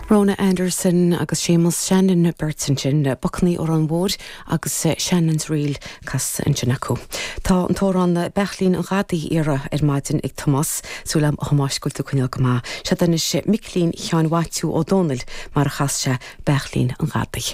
Rhona Anderson agus Séamus Shannon an bheirt ansin le Bocannaí Óráin Mhóir agus Shannon's Reel casta ansin acu. Tá an t-amhrán Beairtlín an Ghadaí iarrtha ar maidin ag Tomás. Súil agam a Thomáis go bhfuil tú ag coinneáil go maith. Seo é anois Micilín Sheáin Mhaitiú Ó Domhnaill mar a chas sé Beairtlín an Ghadaí.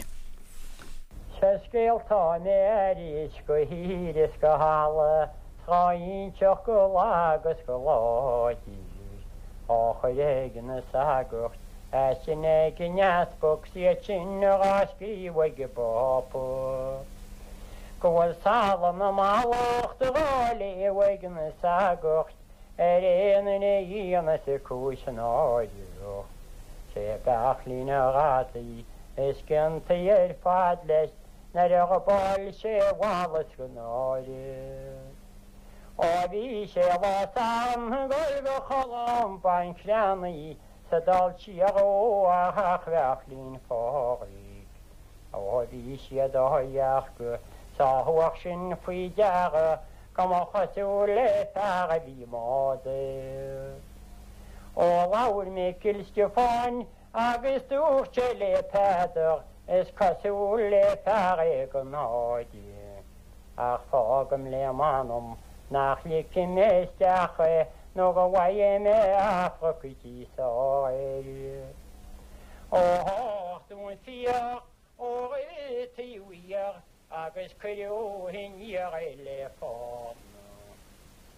Sa scéal tá mé aris go hír is go halaidh. Dhá inseacht go lag agus go láidir á chur ag na sagairt as sin ag an easpag 's iad sin dhá scríobh ag an bPápa Go bhfuil salm na mallachta dhá léamh ag na sagairt ar aon duine a dhéanfas cúis náireach Sé Beairtlín an Ghadaí is ciontaí ar fad leis Nuair a ghabáil sé mhalla sa náire Ó bhí sé lá sam ag gol go Colm Bán creannaí sa dall síoth ó a theach Bheairtlín Phádraig Ó bhí siad á dhearcadh Is thug sinn faoi deara Go mba chosúil le fear a bhí i mbád é Ó labhair Micil Stiofáin Agus dúirt sé le Peadar, Is cosúil le fear éigin a fháil é, ach fágaim le m'anam nach ligfidh mé isteach é nó go bhfaighidh mé amharc coití sall air. Ó thárr do'n fiach ó rith taobh thiar agus cuireadh aniar é le fána.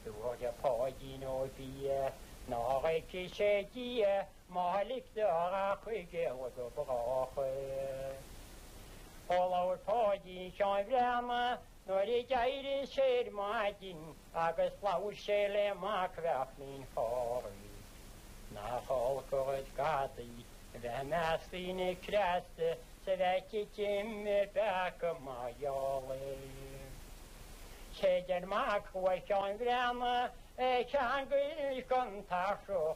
Dúirt Páidín Ó Bia nár fheice sé Dia. Má ligtear ach chuig éalú go brách, ó labhair Páidín Sheáin Bhreathnaigh nuair a d'éirigh sé ar maidin agus labhair sé le Mac Bheachain Chorraí. Nach olc an rud gadaí a bheith i measc daoine cneasta is a bheith titim i bpeaca mar gheall air. Séard deir Mac Uí Sheáin Bhreathnaigh ar cheangail an tairsithe